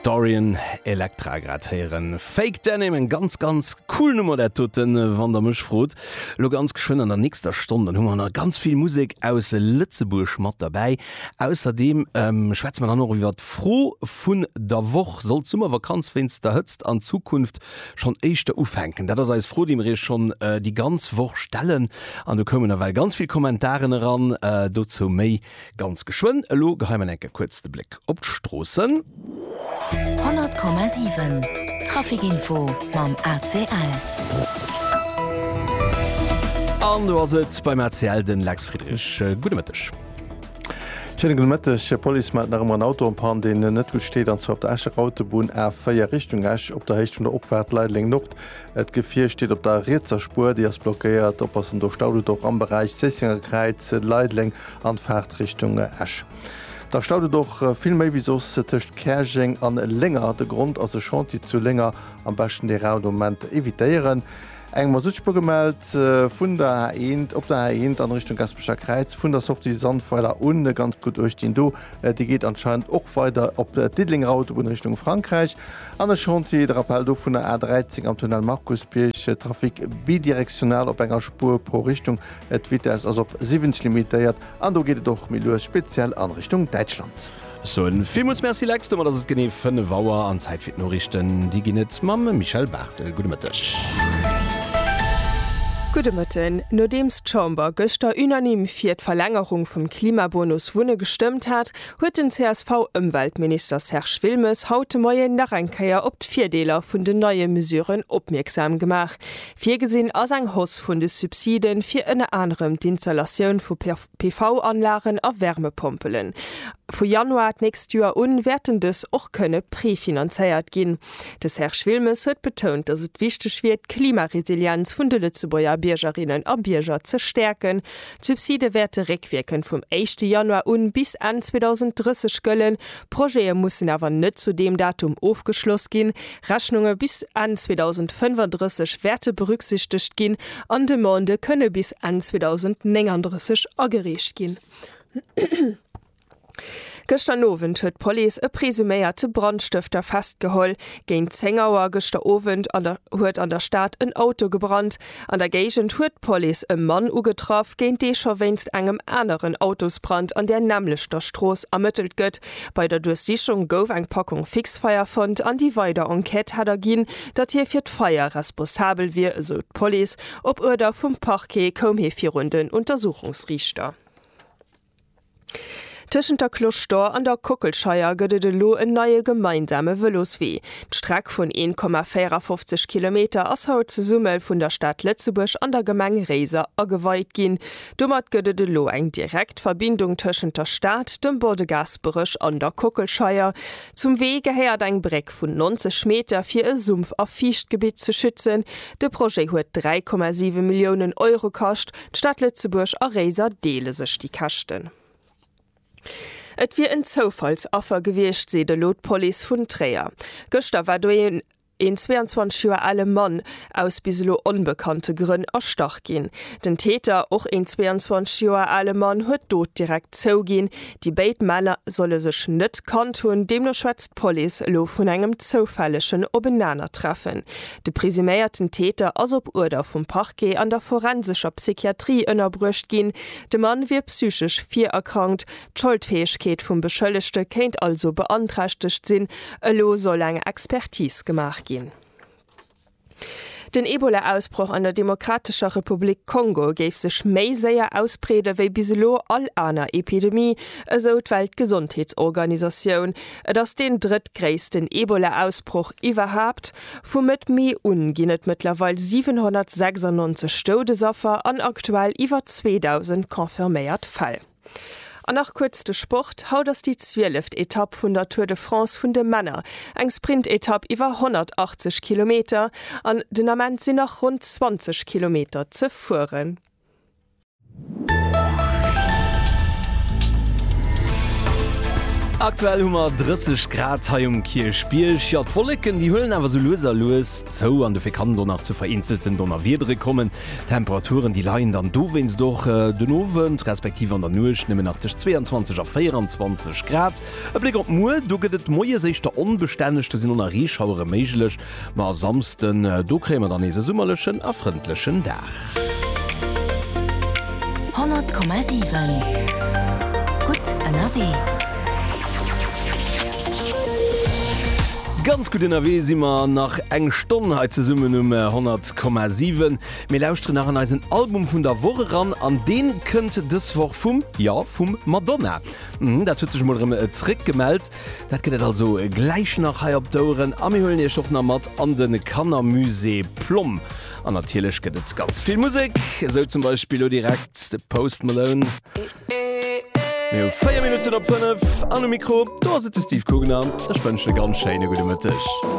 Dorian Electra grad héieren. Fake Denim, eng ganz ganz cool Nummer dat doten, wann der mech frot. Lo ganz geschwënn an der nächster Stonn, dann hu mer nach ganz vill Musek aus Lëtzebuerg mat derbäi. Ausserdeem ähm schwätze mer dann och iwwert d'Fro vun der Woch, Soll d'Summervakanz wéinst der Hëtzt an Zukunft schonn éischter ufänken? Dat ass eis Fro, déi mer iech schonn déi ganz Woch stellen an do koumen ewell ganz vill Kommentaren eran. Dozou méi Ganz geschwënn, elo gehei mer enke kuerz de Bléck op d'Stroossen. 100,7 Trafikinfo mam ACL. An do ass et beim ACL, den Lex Friedrich. Gudde Mëtteg. Schéine gudde Mëtteg. D'Police mellt nach ëmmer en Auto am Panne, deen net gutt steet, an zwar op der Escher Autobunn A4 Richtung Esch op der Héicht vun der Opfaart Leideleng Nord. D'Gefier steet op der rietser Spuer, déi ass blockéiert. Oppassen, do staut et och am Beräich Zéissenger Kräiz, Leideleng an Faart Richtung Esch. Da staut et och vill méi wéi soss tëscht Käerjeng an Lénger. De Grond ass e Chantier zu Lénger. Am beschten de raude Moment evitéieren. Eng Masuttspuer gemellt vun der A1, op der A1 an Richtung Gaspecher Kräiz, vun der Sortie Sandweiler un. Ganz gutt uecht dinn do, déi geet anscheinend och weider op d'Diddelénger Autobunn Richtung Frankräich. An e Chantier, de Rappel dovunner, A 13 am Tunnel Markusbierg, Trafic bidirectionnel op enger Spuer pro Richtung, d'Vitesse ass op 70 limitéiert an do geet et och méi lues, speziell an Richtung Däitschland. Ech soen villmools Merci Lex, domat ass et genee 5 Auer an Zäit fir d'Noriichten. Déi ginn et mam Michel Barthel. Gudde Mëtteg. Gudde Mëtten. Nodeems d'Chamber gëschter unanime fir d'Verlängerung vum Klimabonus Wunne gestëmmt hat, huet den CSV-Ëmweltminister Serge Wilmes haut de Moien nach eng Kéier op d'Virdeeler vun den neie Mesuren opmierksam gemaach. Virgesinn ass eng Hausse vun de Subside fir ënner anerem d'Installatioun vu PV-Anlagen a Wärmepompelen. Vu Januar d'nächst Joer u wäerten dës och kënne prefinanzéiert ginn. De Serge Wilmes huet betount, datt et wichteg wier, d'Klimaresilienz vun de Lëtzebuerger Biergerinnen a Bierger ze stäerken. D'Subside wäerte réckwierkend vum éischte Januar un bis Enn 2030 gëllen. Projete mussen awer net zu deem Datum ofgeschloss ginn. Rechnunge bis Enn 2035 wäerte berücksichtegt ginn an Demandë kënne bis Enn 2039 agereecht ginn. Gëschter Owend huet d'Police e presuméierte Brandstëfter festgeholl. Géint 10 Auer gëschter Owend an der huet an der Stad en Auto gebrannt. An der Géigend huet d'Police e Mann ugetraff, géint dee scho wéinst engem aneren Autosbrand an där nämmlechter Strooss ermëttelt gëtt. Bei der Duerchsichung gouf eng Packung Fixfeier fonnt an déi weider Enquête hätt erginn, datt hie fir d'Feier responsabel wier, esou d'Police. Op Uerder vum Parquet koum hie virun den Untersuchungsriichter. Tëschent der Cloche d'Or an der Kockelscheier gëtt et elo en neie gemeinsame Vëloswee. D'Streck vun 1,54 Kilometer ass haut zesumme vun der Stad Lëtzebuerg an der Gemeng Réiser ageweit ginn. Domat gëtt et elo eng direkt Verbindung tëschent der Stad, dem Bois de Gaasperech an der Kockelscheier. Zum Wee gehéiert eng Bréck vun 90 Meter, fir e Sumpf a Fiichtgebitt ze schützen. De Projet huet 3,7 Milliounen Euro kascht. D'Stad Lëtzebuerg a Réiser deele sech déi Käschten. Et wier en Zoufallsaffer gewiescht, seet elo d'Police vun Tréier. Gëschter war do een 22 Joer ale Mann aus bis elo onbekannte Grënn erstach ginn. Den Täter, och een 22 Joer ale Mann, huet d'Dot direkt zouginn. Déi béid Männer solle sech net kannt hunn. Deemno schwätzt d'Police elo vun engem zoufällegen Openanertreffen. De presuméierten Täter ass op Uerder vum Parquet an der forensescher Psychiatrie ënnerbruecht ginn. De Mann wier psychesch virerkrankt, d'Scholdfäegkeet vum Beschëllegte kéint also beanträchtegt sinn. Elo soll eng Expertis gemaach ginn. Den Ebola-Ausbroch an der Demokratescher Republik Kongo géif sech méi séier ausbreede wéi bis elo all aner Epidemie, esou d'Weltgesondheetsorganisatioun. Et ass deen drëttgréissten Ebola-Ausbroch iwwerhaapt. Vu Mëtt Mee un ginn et mëttlerweil 796 Stoudesaffer an aktuell iwwer 2.000 confirméiert Fäll. An nach kuerz de Sport, Haut ass déi zwieleft Etapp vun der Tour de France vun de Männer, eng Sprintetapp iwwer 180 Kilometer an den Ament sinn nach ronn 20 Kilometer ze fueren. Aktuell hu mer 30 Grad hei um Kierchbierg. Jo, d'Wolleken, déi huelen awer sou lues a lues zou an dofir kann do nach zu vereenzelten Donnerwiedere kommen. D'Temperaturen, déi leien dann dowéinst och den Owend, respektiv an der Nuecht nëmmen nach tëscht 22 a 24 Grad. E Bléck op muer, Do gëtt et moies éischter onbestänneg, do sinn do nach Reeschauere méiglech, Ma a Samsden, do kréie mer dann nees e summerlechen a frëndlechen Dag. 100,7 Gutt ënnerwee. Ganz gutt ënnerwee si mer. Nach eng Stonn hei zesummen um 100,7. Mir lauschteren nach an eisen Album vun der Woch eran an deen kënnt dës Woch vum, jo, vum Madonna. Dat huet sech mol erëm zréck gemellt. Dat gëtt et also gläich nach hei op d'Oueren a mir huelen Iech och nach mat an de Kannermusée Plomm. An natierlech gëtt et ganz vill Musek, esou zum Beispill lo direkt de Post Malone. Mir hu 4 Minutten op 5 an um Mikro, do ass et de Steve Kugner. Ech wënschen e ganz schéine gudde Mëtteg.